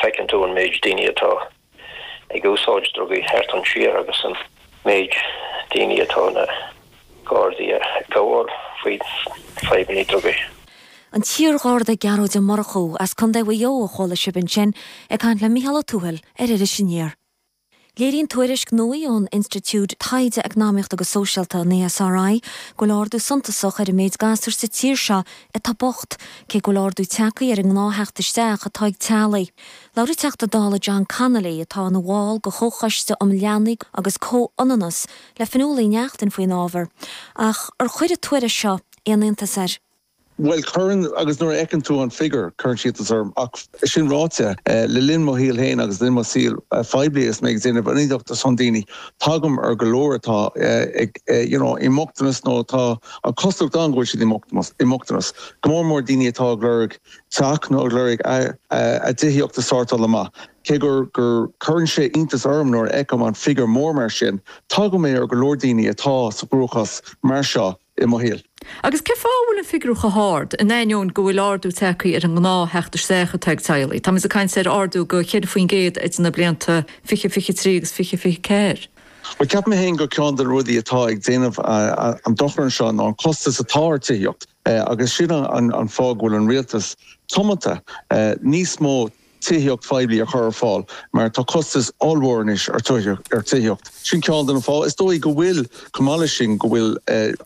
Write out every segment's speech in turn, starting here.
Feiceann tú an méid daoine atá ag úsáid drugaí thart an tír agus an méid daoine atá na Gardaí a' gabháil faoi fadhbanna drugaí. An t-iar-Gharda Gearóid Ó Murchú as Contae Mhaigh Eo a chuala sibh ansin ag caint le Micheál Ó Tuathail ar Iris Aniar. Léiríonn tuairisc nuaí ón Institiúid Taighde Eacnamaíochta agus Sóisialta, an ESRI, go bhfuil ardú suntasach ar an méid gasúr sa tír seo atá bocht, cé go bhfuil ardú tagthaí ar an ngnáth-theacht isteach atá ag teaghlaigh. Labhair an Teachta Dála John Connolly, atá ina bhall de Chomhchoiste um Leanaí agus Comhionannas, le Fionnuala Uí Neachtain faoin ábhar, ach ar chuir an tuairisc seo aon iontas air? Bhuel, cuireann, agus nuair a fheiceann tú an figure, cuireann sé iontas orm. Ach sin ráite, le linn mo shaoil féin agus le linn mo shaoil phoiblí agus mé ag déanamh ionadaíocht ar son daoine, tagaim ar go leor atá ag, you know, i mbochtanas nó atá an chosúlacht ann go bhfuil siad i mbochtanas, go mór mór daoine atá ag lorg teach nó ag lorg a dtithíocht a sórtáil amach. Cé go gcuireann sé iontas orm nuair a fheicim an figiúr mór mar sin, tagaim ar go leor daoine atá sa gcruachás mar seo. i mo shaol. Agus cé fáth a bhfuil an figiúr chomh hard, in ainneoin go bhfuil ardú tagthaí ar an ngnáth theacht isteach atá ag teaghlaigh? Tá muid ag caint ar ardú go 4% idir na blianta 2023 agus 2024. Bhuel, ceapaim féin go ceann de na rudaí atá ag déanamh an dochar anseo ná an costas atá ar tithíocht agus sin an fáth go bhfuil an rialtas tiomanta níos mó tithíocht phoiblí a chur ar fáil mar tá costas ollmhór anois ar tithíocht. Sin ceann de na fátha is dóigh go bhfuil, chomh maith leis sin, go bhfuil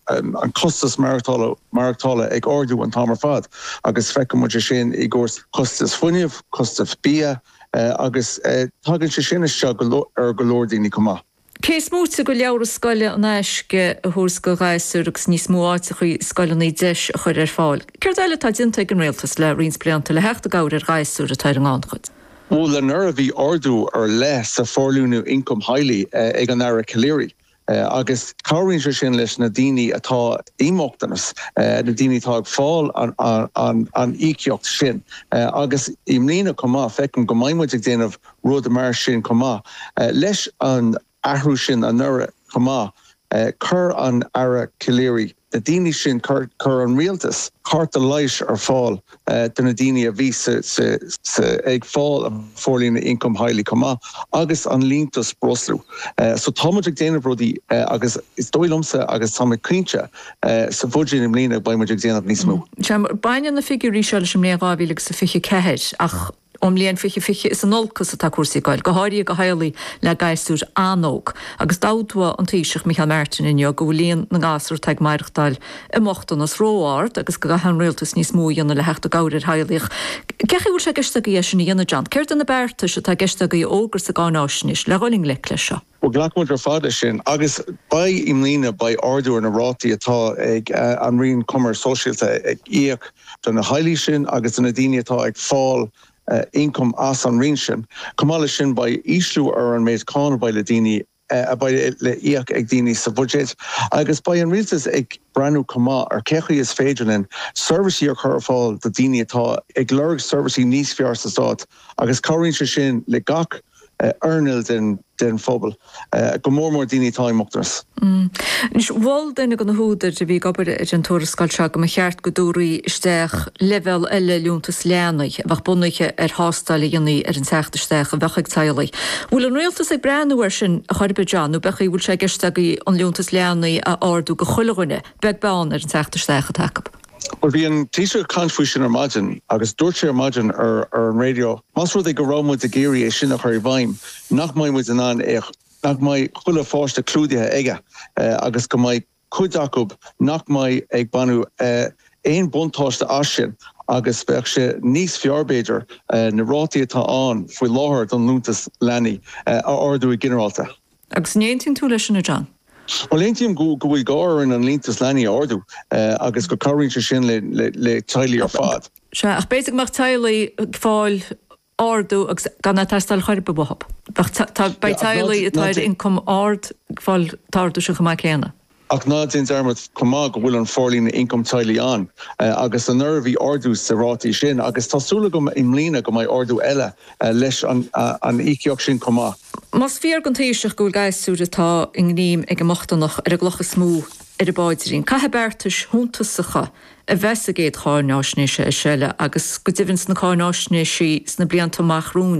an costas maireachtála maireachtála ag ardú an t-am ar fad agus feiceann muid é sin i gcúrsaí costas fuinnimh, costas bia agus tagann sé sin isteach ar go leor daoine chomh maith. Cé is móite de leabhra scoile in aisce a thabhairt do ghasúir agus níos mó áiteacha i scoileanna deis a chur ar fáil, céard eile atá déanta ag an Rialtas le roinnt blianta le theacht i gcabhair ar ghasúir atá ar an ngannchuid? Bhuel anuraidh bhí ardú ar leith sa Forlíonadh Ioncaim Theaghlaigh ag an Aire Calleary agus cabhraíonn sé sin leis na daoine atá i mbochtanas, na daoine atá ag fáil an íocaíocht sin agus i mbliana chomh maith feictear dom go mbeidh muid ag déanamh rud mar sin chomh maith. Leis an athrú sin anuraidh chomh maith, chuir an Aire Calleary na daoine sin, chuir an Rialtas cárta leighis ar fáil do na daoine a bhí ag fáil an Forlíonadh Ioncaim Theaghlaigh chomh maith agus an liúntas breosla. So tá muid ag déanamh rudaí agus is dóigh liomsa agus tá mé cinnte sa bhuiséad i mbliana beidh muid ag déanamh níos mó. Baineann na figiúirí seo leis an mbliain 2024 ach. Ón mbliain 2020 is in olcas atá cúrsaí ag dul, go háirithe ag teaghlaigh le gasúir an-óg, agus d'admhaigh an Taoiseach Micheál Martin inniu go bhfuil líon na ngasúr atá ag maireachtáil i mbochtanas ró-ard agus go gcaithfidh an Rialtas níos mó a dhéanamh le theacht i gcabhair ar theaghlaigh. Cén chaoi a bhfuil sé i gceist agaibh é sin a dhéanamh, John? Céard iad na beartais atá i gceist agaibh a fhógairt sa gcáináisnéis le dhul i ngleic leis seo? Bhuel, glacann muid ar fad leis sin agus beidh, i mbliana, beidh ardú ar na rátaí atá ag an Roinn Coimirce Sóisialta ag íoc do na teaghlaigh sin agus do na daoine atá ag fáil ioncam as an roinn sin. Chomh maith leis sin, beidh ísliú ar an méid cáin a bheidh le daoine, a bheidh le íoc ag daoine sa bhuiséad agus beidh an rialtas ag breathnú chomh maith ar cé chaoi is féidir linn seirbhísí a chur ar fáil do daoine atá ag lorg seirbhísí níos fearr sa stát agus cabhraíonn sé sin le gach earnáil den phobal, go mór mór daoine atá i mbochtanas. Anois, mhol duine dhe na húdair a bhí ag obair ar an tuarascáil seo go mba cheart go dtabharfaí isteach leibhéal eile liúntas leanaí a bheadh bunaithe ar thástáil a dhéanamh ar an teacht isteach a bheadh ag teaghlaigh. An bhfuil an rialtas ag breathnú air sin chor ar bith, John, nó an bhfuil sé i gceist agaibh an liúntas leanaí a ardú do chuile dhuine, beag beann ar an teacht isteach atá acu? Bhuel, bhí an Taoiseach ag caint faoi sin ar maidin agus dúirt sé ar maidin ar an raidió, más rud é go raibh muid ag iarraidh é sin a chur i bhfeidhm, nach mbeidh muid in ann é a, nach mbeidh chuile pháiste clúdaithe aige agus go mbeidh cuid acu nach mbeidh ag baint aon buntáiste as sin agus bheadh sé níos fearr b'fhéidir na rátaí atá ann faoi láthair don liúntas leanaí a ardú i ginearálta. Agus an aontaíonn tú leis sin, a John? Bhuel, aontaím go bhfuil gá orainn an liúntas leanaí a ardú agus go cabhraíonn sé sin le na teaghlaigh ar fad. Sea, ach b'fhéidir go mbeadh teaghlaigh ag fáil ardú agus gan é ag teastáil chor ar bith uathu. Beidh teaghlaigh atá ar ioncam ard ag fáil an t-ardú sin chomh maith céanna. Ach ná déan dearmad chomh maith go bhfuil an Forlíonadh Ioncam Teaghlaigh ann agus anuraidh bhí ardú sa rátaí sin agus tá súil agam i mbliana go mbeidh ardú eile leis an íocaíocht sin chomh maith. Más fíor don Taoiseach go bhfuil gasúir atá i ngreim ag an mbochtaineacht ar an gcloch is mó ar a phaidrín, caithfidh beartais suntasacha a bheith sa gcéad cháináisnéis eile agus go deimhin sna cáináisnéisí sna blianta amach romhainn.